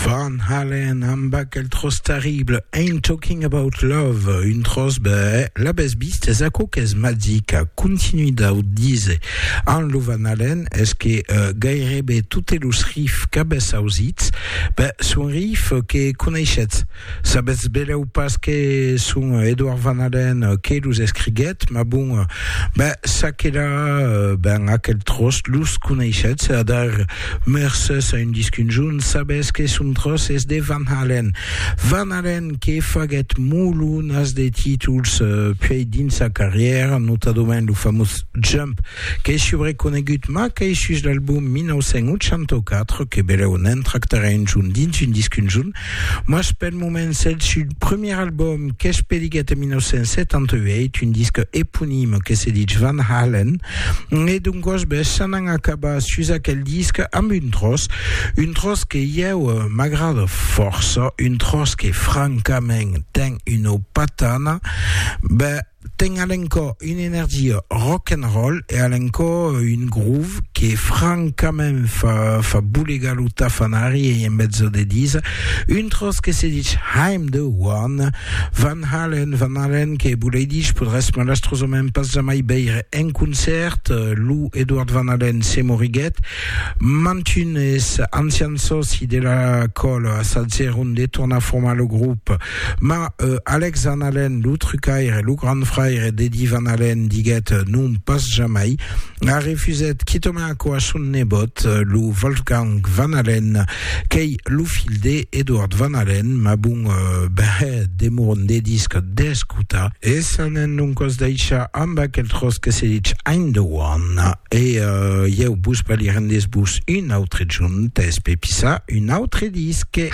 Van Halen amb aquel tròç terrible Ain't Talking About Love, un tròç bèh, l'abès vist, es aquò qu'es magic, continui dau díser amb lo Van Halen, es que gairebe totes los riffs qu'abès ausits, bèh, son riffs que coneishetz. Sabetz belèu pas que son Edouard Van Halen que los escriguèt, mas bon, ben, ça que la, ben, aquel tròç los coneishetz, adar, mercés a un disc un jorn, sabetz que son tròç es de Van Halen. Van Halen que faguèt molonas de títols puèi dins sa carrièra, notadament lo famós Jump, qu'es subreconegut, mas qu'es sus l'album 1984, que belèu ne'n tractarè un jorn dins un disc un jorn, Mas pel moment s'el sud premier album qu'es peliguet en 1978, un disque eponime que se ditz Van Halen, e d'un gosbes s'anan acabar sus aquel disque amb un tròç, un tròç que ieu m'agrada fòrça, un tròç que francament ten una patana, ben, Ten a l'encò una energia rock and roll e a l'encò un groove que francament fa fa bolegar lo tafanari ei en mezzo de disa un tròç que se dich I'm the one Van Halen Van Halen que volei dich podràs malastrosament pas jamai veire en concèrt lo Edward Van Halen se moriguèt Mantunes ancians sòci de la còl assajèron de tornar formar lo grop, ma Alex Van Halen, lo trucaire, lo grand fraire d'Eddie Van Halen, diguèt non pas jamai, a refusèt quitament aquò a son nebòt, lo Wolfgang Van Halen, qu'ei lo filh de Edward Van Halen, ma bon, ben, demoron de disc d'escotar. E s'anèn doncòs daishar amb aquel tròç que se ditz Aindewan. E ieu vos balhirem des vos un autre junt, es pepissar un autre disque.